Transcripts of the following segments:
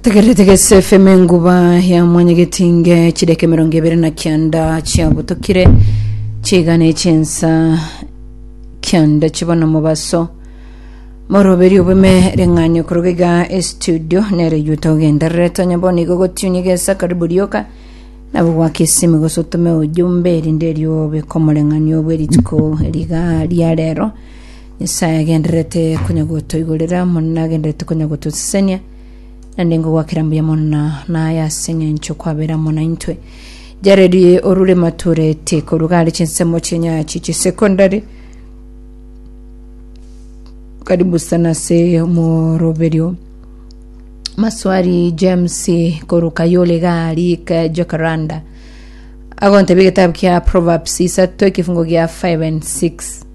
tegererete gese fm enguba ya mwanyagetinge chideke mirongo ibere na kianda chiabutokire chigana echensa kianda chibona mobaso moroberi obume reng'anyo koroga iga estudio nere yuta ogenderere tonya bono igo gotiunia gesa karibu rioka nabo gwaka esimi gose otome ojumbe erinde erio bekomoreng'ania obwe rituko riga ria rero Nyasae agendererete konya gotoigorera mono na agendererete konya gotosesenia, na nde ngogwakera mbuya mono na naye ase eng'encho kwabera amo naintwe. Jared orure mature tiko rugari chinsemo chenyachi chisekondari karibu sana se moroberio maswari james koruka yole gari ka jokaranda agontebia egetabu kia proverbs isato ekifungo gia 5 and 6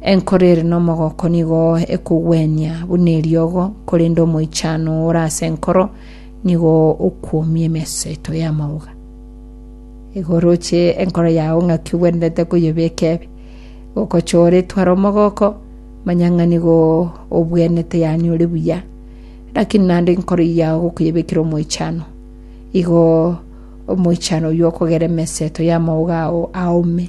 Enkoro ere nomogoko nigo ekogwenia buna eriogo, korende omoichano ore ase enkoro nigo okwomia emeseto y'amauga. Igo oroche enkoro yao ng'aki ogwenerete koyebeka ebe, gokocha ore twara omogoko, manya ng'a nigo obwenete yaani ore buya. Lakini naende enkoro yao gokoyebekera omoichano, igo omoichano oyio okogera emeseto y'amauga ao aome.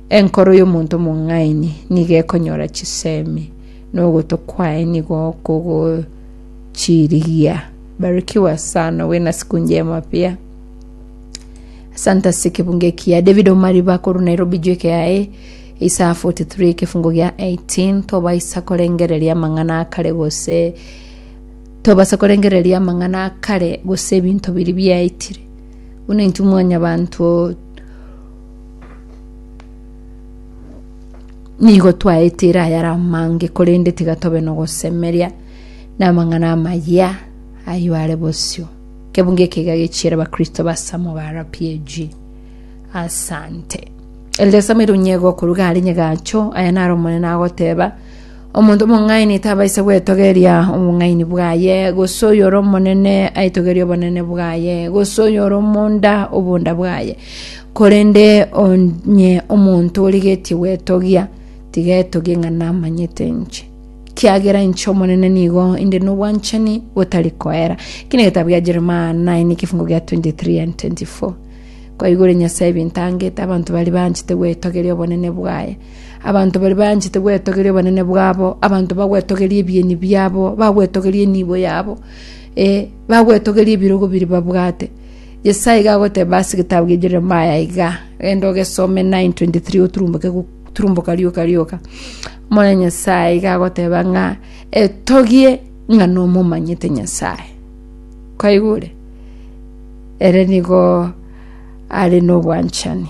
Enkoro y'omonto omong'aini nigo ekonyora chisemi, na ogoto kwaye nigo kogochirigia. Barikiwa sana, uwe na siku njema pia. Asante ase ekebunga ekiya David Omariba korwa Nairobi jweke yaye Isaya 43 ekefungo gia 18 tobaisa korengereria amang'ana akare gose tobasa korengereria amang'ana akare gose ebinto biri biaetire buna intwe mwanyabanto Nigo twaetire ayare amange, korende tiga tobe nogosemeria namang'ana amaya ayio are bosio. Kebunga eke iga gechiere Abakristo ba Samogara PAG. Asante. Elder Samuel Onyego koruga are Nyagacho, aya naro Omonene agoteba, Omonto omong'aini tabaisa gwetogeria obong'aini bwaye, gose oyore omonene aitogerie obonene bwaye, gose oyore omonda obonda bwaye. Korende onye omonto origetie gwetogia, tiga etogie ng'a namanyete inche. Kiagera inche Omonene nigo inde nobwanchani botari koera. Eki negetabu gia Jeremia 9 ekifungo gia 23 and 24. Kwaigure Nyasae ebinto angete, abanto baria banchete gwetogeria obonene bwaye, Abanto baria baanchete gwetogeria obonene bwabo, abanto bagwetogeria ebieni biabo, bagwetogeria enibo yabo, ee, bagwetogeria ebirogo biria babwate. Nyasae iga agoteba ase egetabu gia Jeremaya iga, genda ogesome 9:23 oturumboke gu- turumboka rioka rioka. Omwana Nyasae iga agoteba ng'a etogie ng'a nomomanyete Nyasae. Kwaigure? Ere nigo are nobwanchani.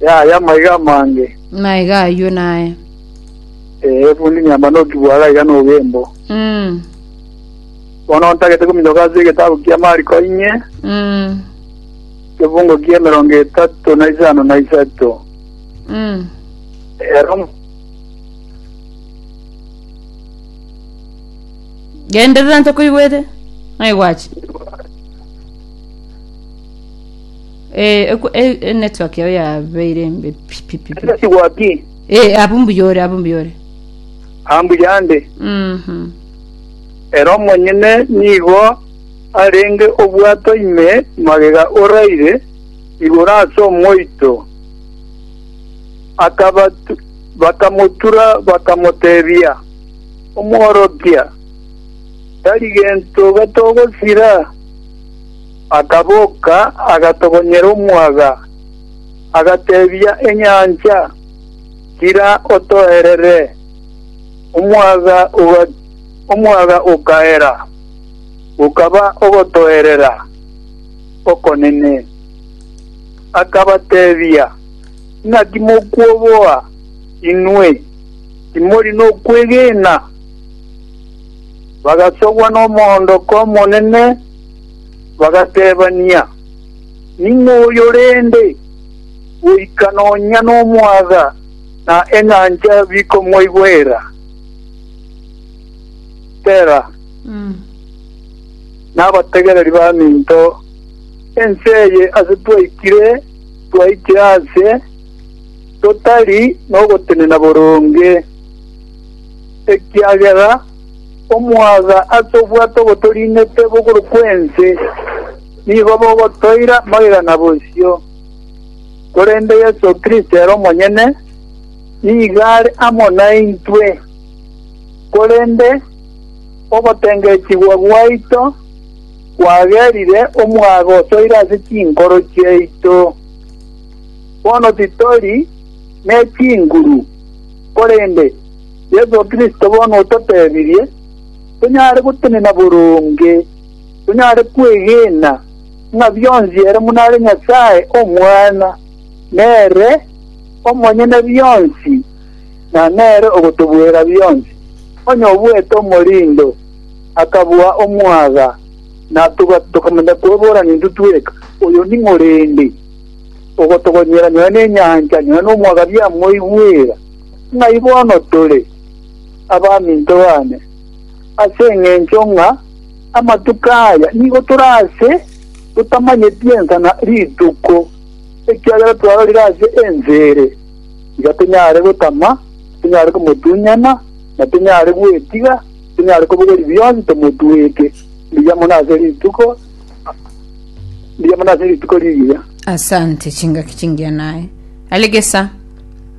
Yaya maiga amange. Maiga aywo naye. Ee bundi nyamba nokigwa gaiga nogembo. Mm. Bono ntagete kominyoka ase egetabu kia Mariko inye, Mm. ekifungo kia emerongo etato na isano na isato. Mm. Ero Genderera ntokoigwete. Naigwachi. Eh, eku- eh, eh, network yao yabeire embe pi- pi- pi- pi. Ati gwaki Eh, abu mbuyore abu mbuyore ambu yande Mhm. ero monyene nigo arenge obwato ime magega oraire igoro ase omoito Akabatu- bakamotura bakamotebia omworokia tari gento gatogosira Akaboka, agatogonyera omwaga, agateebia enyancha, Tira otoerere! Omwaga ogatira, omwaga okaera, gokaba ogotoerera okonene. Akabateebia, Naki mokwoboa inwe? Timori nokwegena? Bagasogwa nomoondoko omonene. Bagatebania, Ning'o oyo rende, goika nonya nomwaga na enyancha bikomoigwera? Sela. Nabategereri baminto, ense eye ase twaikire twaichire aase totari nogotenena boronge, ekiagera Omwaga ase obwato obotorinete bogoro kw'ense nigo bogotoira magega na bosio, korende Yeso Kristo ere omonyene nigo are amo naintwe. Korende ogotengechigwa gwaito kwagerire omwaga osoire ase chinkoro chiaito. Bono titori ne chinguru, korende Yeso Kristo bono ototebirie tonyare gotenena boronge, tonyare kwegena ng'a bionsi ere buna are Nyasae Omwana, nere omonyene bionsi, na nere ogotobuera bionsi. Onye obuete omorindo, akabua omwaga, na tokamanya kweborana intwe tweka, oyo ning'o rende ogotogonyera nonya nenyancha, nonya nomwaga biamoigwera? Ng'ai bono tore, abaminto baane, ase engencho ng'a amatuko aya nigo tore aase totamanyeti ensa na rituko, ekiagera twarorire ase ense ere, tiga tonyare gotama, tonyare komotunyana, na tonyare gwetiga, tonyare kobogoria bionsi tomotweke mbuya mono ase rituko mbuya mono ase rituko rigiya. Asante chingaki chingiya naye. Alegesa.